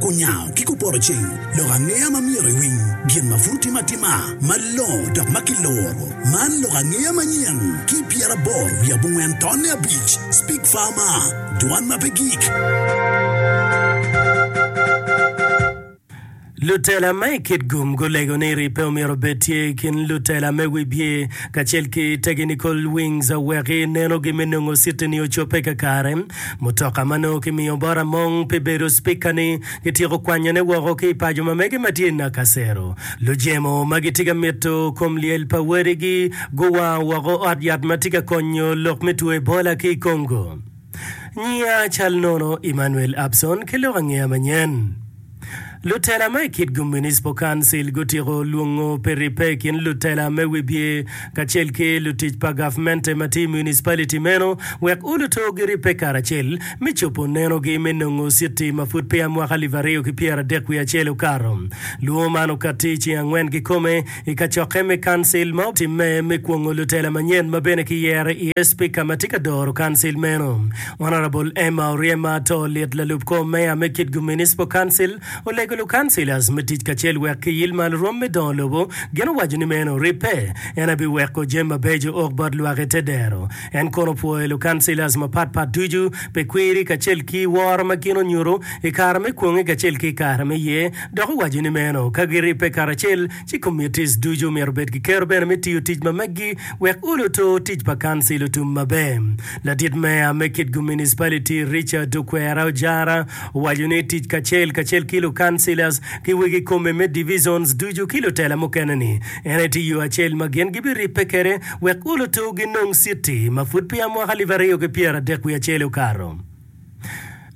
Kunyango ki kuporoceng lok angeya ma myero iwiny gin ma pud otime atima malongo dok ma kiluro. Man lok angeya manyen ki pyeraboro wiye abongwen tonne abic, Speak Farmer, Dwan ma pe gik. Lutela ma i Kitgum gulego ni ri pe omyero obed tye i kin lutela me wibye kacel ki Technical Wings wek inenogi me nongo citini ocobbe kakare. Mutoka ma nongo kimiyo bot Among pi bedo Spika ni kityeko kwanyone woko ki i paco ma mege ma tye i Nakasero. Lujemo ma gitye ka mito kom lyel pa wadigi guwango woko ot yat ma tye ka konyo lok me two Ebola ki i Congo. Nyiya cal nono Emmanuel Abson ki lok angeya manyen. Lutela ma i kit-gu Municipal Council gutyeko lwongo peripe i kin lutela me wibye kacel ki lutic pa gavmente ma tye i municipality meno wek uluto giripe karacel me cobo nenogi me nongo citi ma pud peya mwaka alip aryo ki pyera dek wiye acel okato. Lwongo man okatti i ceng angwen kikome I kacokke me Kancil ma otimme me kwongo lutela manyen ma bene kiyero iye Spika ma tye ka doro Kancil meno, Honourable Emma Oryema to lit lalup kor meya me Kitgum Municipal Council olego lukancilas me tic kacel wek kiyil malo rwom me dongo lobo. Gin owaco ni meno ribbe, ento biweko jami mabeco ok bot lwak i te dero. En kono opwoyo lukancilas mapatpat ducu pi kwiri kacel ki woro ma gin onyuto i kare me kwonge kacel ki i kare me ye, dok owaco ni meno ka giribbe karacel, ci komitis ducu myero obed ki kero bene me tiyo tic ma meggi wek olo to tic pa kancil otum maber. Ladit meya me Kitgum Municipality, Richard Okwera Ojara, owaco ni tic kacel kacel ki lukancilas ki wegi kome me divisions ducu ki lutela mukene-ni, En aye tye yo acel ma gin gibiribbe kwede wek gulu tur ginong Citi ma pud peya mwaka alip aryo ki pyeradek wiye acel okato.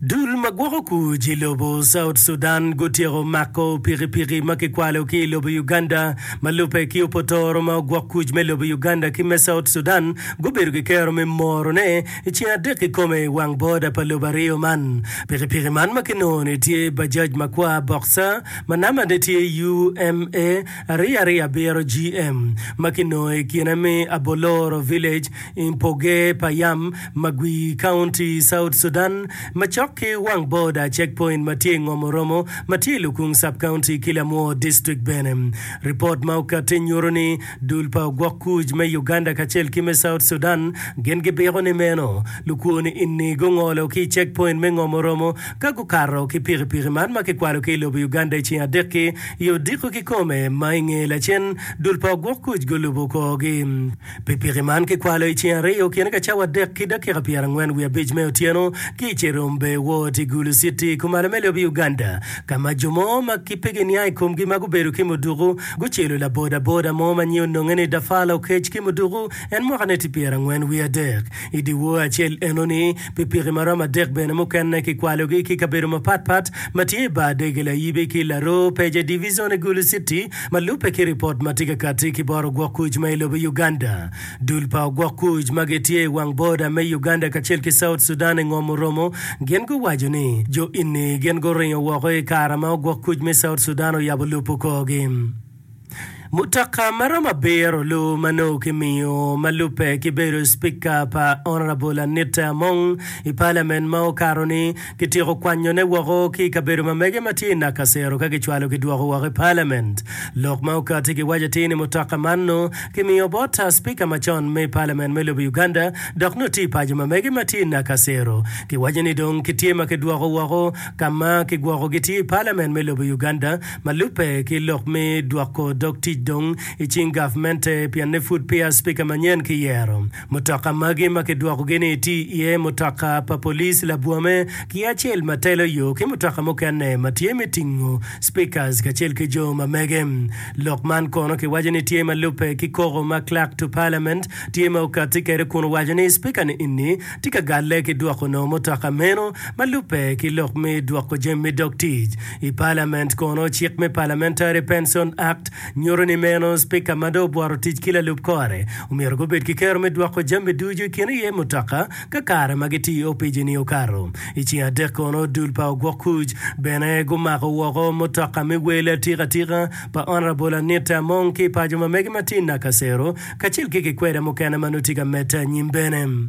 Dul ma gwoko kuc i lobo South Sudan gutyeko mako pikipiki ma kikwalo ki i lobo Uganda ma lubbe ki opotoro ma ogwok kuc me lobo Uganda ki me South Sudan gubedo ki kero me moro ne i ceng adek kikome i wang boda pa lobo aryo man. Pikipiki man ma kinongo ni tye Bajaj makwar boxer ma namba ne tye UMA Ariya-riya biro GM ma ki nongo i kine me Aboloro Village i mpoge pa Yam Magwi County, South Sudan, macok ki wang border checkpoint ma tye i ngom Oromo ma tye i Lukung Sub-County ki Lamwor District bene. Report ma okati nyuto ni dul pa ogwok kuc me Uganda kacel ki me South Sudan gin gibiko ni meno lukwo ni inni gungolo ki i checkpoint me ngom Oromo ka gukato ki pikipiki man ma kikwalo ki i lobo Uganda i ceng adek ki I odiko kikome ma i nge lacen, dul pa ogwok kuc gulubo kor-gi. Pikipiki man kikwalo i ceng aryo kine ka cawa adek ki dakika pyerangwen wiye abic me otyeno ki i Cherombe Ward i Gulu City, kumalo me lobo Uganda, ka ma jo mo ma ki pe giniang i komgi ma gubedo ki muduku gucelo labodaboda mo ma nyinge ononge ni Dafala Oketch ki muduku en mwakane tye pyerangwen wiye adek. I dyewor acel enoni, Pikipiki ma romo adek bene mukene kikwalogi ki kabedo mapat pat ma tye i bar Dege Layibi ki Laroo Peja Divizon i Gulu Citi. Ma lubbe ki ripot ma tye ka kati ki bot ogwok kuc ma i lobo Uganda, dul pa ogwok kuc ma gitye i wang boda me Uganda kacel ki South Sudan i ngom oromo gin guwaco ni jo inni gin guringo woko i kare ma ogwok kuc me South Sudan oyabo lupo korgi. Mutoka ma romo abiro lu ma nongo kimiyo ma lubbe ki bedo Spika pa Honourable Anita Among i Parliament ma okato ni kityeko kwanyo ne woko ki i kabedo ma mege ma tye i Nakasero ka kicwalo ki dwoko woko i Parliament. Lok ma okati ki waco atir ni mutoka man nongo kimiyo bot Spika macon me Parliament me lobo Uganda dok nongo tye i paco ma mege ma tye i Nakasero. Kiwaco ni dong kitye ma kidwoko woko ka ma kigwoko gi tye i Parliament me lobo Uganda Ma lubbe ki lok me dwoko dog tic dong i cing gavmente pienne pud peya Cipika manyen kiyero. Mutoka magi ma kidwokogi ni tye iye mutoka pa police labwome ki acel ma telo yo ki mutoka mukene ma tye me tingo Speakers kacel ki jo ma mege. Lok man kono kiwaco ni tye ma lubbe ki koko ma Clerk to Parliament tye ma okatti kwede kun owaco ni Cipika ni eni tye ka galle ki dwoko nongo mutoka meno ma lubbe ki lok me dwoko jami dog tic I palament kono, cik me Parliamentary Pension Act nyuto ni meno Spika ma dong obworo tic ki lalub kore omyero gubed ki kero me dwoko jami ducu i kine iye mutoka ka kare ma gitye i opic-ni okato. I ceng adek kono, dul pa ogwok kuc bene gumako woko mutoka me wel atika tika pa Honourable Anita Among ki i paco ma mege ma tye i Nakasero kacel ki kikweda mukene ma nongo tye ka medde anyim bene.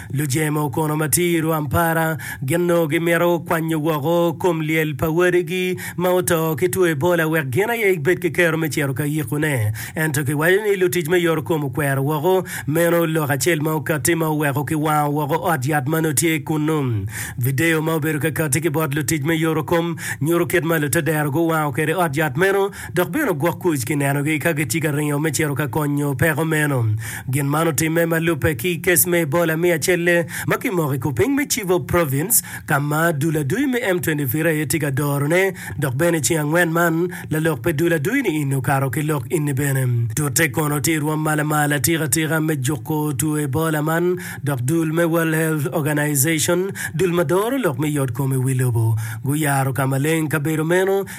Lujemo kono ma tye i Rwampara gin onongo gimito kwanyo woko kom lyel pa wadigi ma oto ki two Ebola wek gin aye gibed ki kero me cito ka yikone. Ento kiwaco ni lutic me yorokom okwero woko meno lok acel ma okatti ma oweko kiwango woko ot yat ma nongo tye kunnu. Video ma obedo kakatti ki bot lutic me yorokom nyuto kit ma lutedero guwango kwede ot yat meno dok bene gwok kuc ki nenogi ka gitye ka ringo me cito ka konyo peko meno. Gin man otimme ma lubbe ki i kes me Ebola me acelle ma kimoko i kupiny me Chibok Province ka ma dul adui me M23 aye tye ka dorone dok bene i ceng angwen man lalok pe dul adui ni inni okato ki lok inni bene. Tute kono tye irwom malamal atika tika me juko two Ebola man dok dul me World Health Organization, dul ma doro lok me yot kom i wi lobo, guyaro ka maleng kabedo meno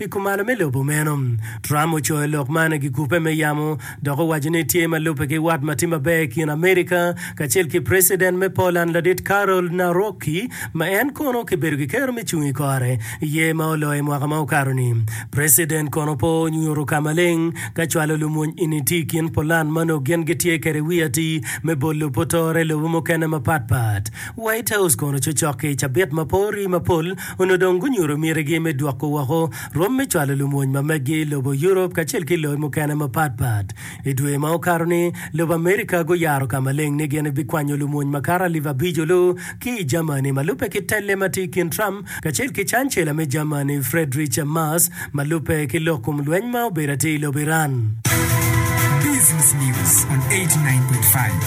I kumalo me lobo meno, Trump ocoyo lok man i gikupe me yamo dok owaco ni tye ma lubbe ki wat ma tye maber i kin Amerika kacel ki Preciden me Poland ladit Karol Nawrocki ma en kono kibedo kikero me cung i kore i yer ma oloyo i mwaka ma okato ni. Preciden kono pe onyuto ka maleng ka cwalo lumony ini tye i kin Poland ma nongo gin gitye kede wi atii me bolo putore lobo mukene mapat pat. White House kono cocok ki i cabit ma pori mapol onongo dong gunyuto mitigi me dwoko woko rwom me cwalo lumony ma meggi i lobo Europe kacel ki loyo mukene mapat pat. I dwe ma okato-ni, lobo America guyaro ka maleng ni gin bikwanyo lumony makato alip abico lu ki i Germany ma lubbe ki telle ma tye i kin Trump kacel ki cancela me Germany Friedrich Merz ma lubbe ki lok kom lweny ma obedo atir i lobo Iran. Business News on 89.5.